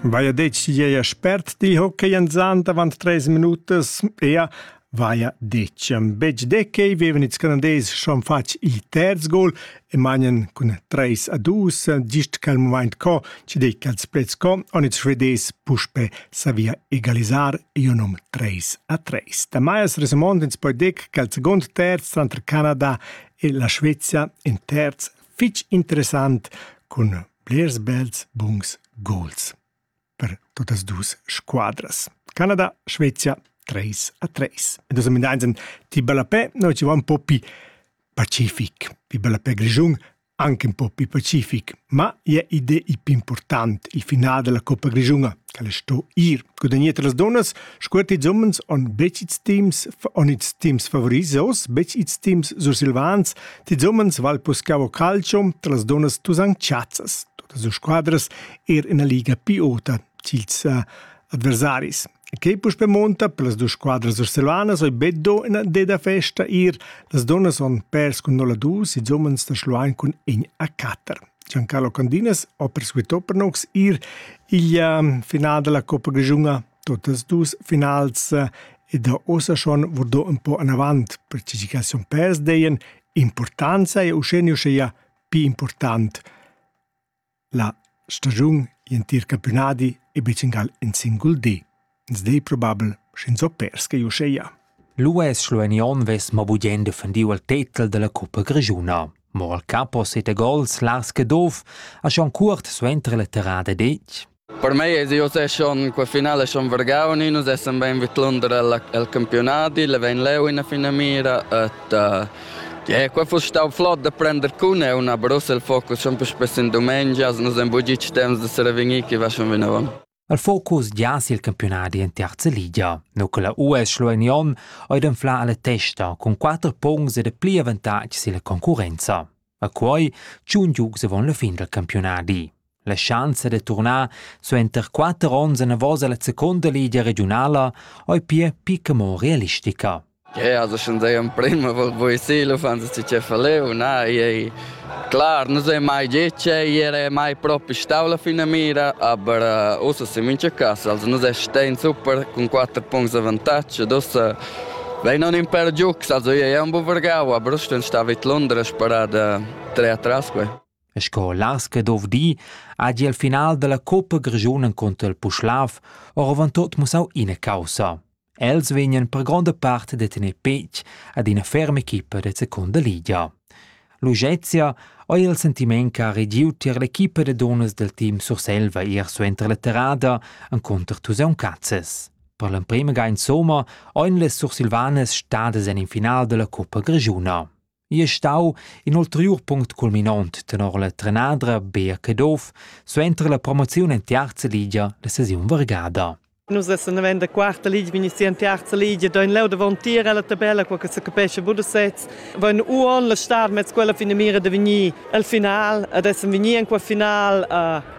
Vaia detg gieia spert di hockey en zand avant tres minutas, ea vaia detg. Betg decei vevan ils Canadesi schon fatg il terz gol e magnan cun 3 a 2, gist quel moment co, ci dei quels plets co, on ils Svedesi puspe savia egalisar ionum 3 a 3. Da Maias Resemond ins poi dec che il second terz tranter Canada e la Svezia in terz fitch interessant cun Blers bels buns gols per tuttas dus squadras. Canada, Svezia 3 a 3. E dus amendaizen ti ballapè, noi ci va un po' più pacific, più ballapè grigiun, anche un po' più pacific, ma è ide i più important il finale della Coppa Grigiuna. Quel è sto ir. Gudagnir las dunnas, scuert ils umens on betg ils teams, on ils teams favorisos, betg ils teams sursilvans, ils umens val puscavo calcio, tra las dunnas tu san chazzas. Totas las squadras er in la liga piota cils uh, adversaris. Che puspe monta per las due squadre sursilvanas oi beddo in deda festa ir, las donnas on pers cun 0 2, i umens da Schluein cun in a 4. Giancarlo Candinas ha persuito per nous ir igl final della coppa grischuna, totas dus finals ed ha ussa schon vurdò ün po anavant, perche chi cas sun pers deien importanza e uschè uschea pii important la stagiun, gl'entir campiunadi e be gingal in singul di. Ins di probabel, sch'ins ho perschia uscheia. L'US schluenion vess mo bugien defendiu il tetel della cuppa grischuna. Mo al capo sete gols las che dov a schon cuort suenter la terrada detg. Per mei è io è schon quel finale schon vergauni, nus essen ben vid l'under al, al campionati, le ven leu in fina mira et uh, yeah, quel fu stau flott da prender cun è una Brussel focus schon più spesso in domenica, nus en bugic temps da se revenir che va schon vinavon. El focus giass il campiunadi en terza ligia, nu che la US Schluein Jon oi d'anflar la testa cun quatter puncts ed pli avantatg silla concurrenza. A quoi tschun giugs avon la fin del campiunadi. La schanza de turnar suenter quatter ons enavos alla seconda ligia regionala oi pia picca mo realistica. Jeu has ascendeu emprem a poesia, l'uffanta si che fa leu, na, ei clar, nus ei mai getg, ei era mai propi stau la finamira, aber ussa semintga cass, also nus stain super cun quatter puncts avantatg, ed ussa vegn aunc in pèr giugs, also ei ei aunc buca vargau, aber uss ston star vid Londra sperada trer atras quei. E sco Laske dov di, hagi el final dalla coppa grischun encunter il Puschlav oravon tot mussau ina caussa. Els vegnan per gronda part da tener petg ad ina ferma equipa da secunda ligia. L'Ugezia ha il sentiment che ha regiu tier l'equipa da dunnas del team Surselva ier suenter la terrada encontro Tuseun Cazzes. Per l'emprema ga insomma ein le sursilvanas stadas en in final della Coppa Grigiuna. I è stau in ulteriur punct culminont tenor la trenadra Bea Caduff suenter la promoziun en Tiarza Ligia la sesiun vargada. Nus essan davent da quarta ligia, vegni si en terza ligia, da in leu davantier alla tabella, quella che se capesce bu da sez. Vain uon la star mez quella fine mira de vegni al final, ad essem vegni en quel final uh,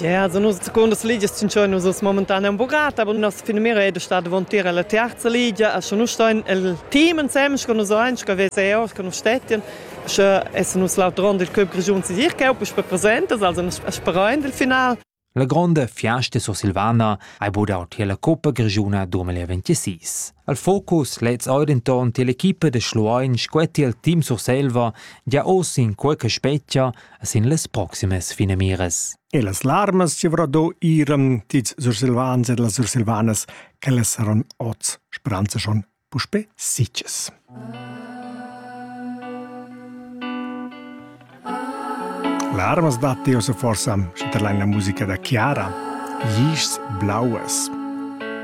Ja, za nus secundas ligias tschintschain nus es momentaneum bugata, aber nossa finamira è da star davantir alla terza ligia, a scha nus stain el team ensems con nus ein, scha VCO, scha nus stettian, scha essan nus l'autrond del club grischun Sisirchau per presentas, also sperain del final. La gronda fiasta sursilvana hai budau tier la Coppa Grischuna 2026. Al focus lez ei denton tier l'equipa da Schluein scuetti il team Surselva gia oz in quei che spetga sin las proximas finamiras. E las larmas ci avra do iram tis sursilvans e las sursilvanas che le saron oz speranza schon puspe sitges. Larmas dat io se forsa, sche la musica da Chiara, Gis blaues.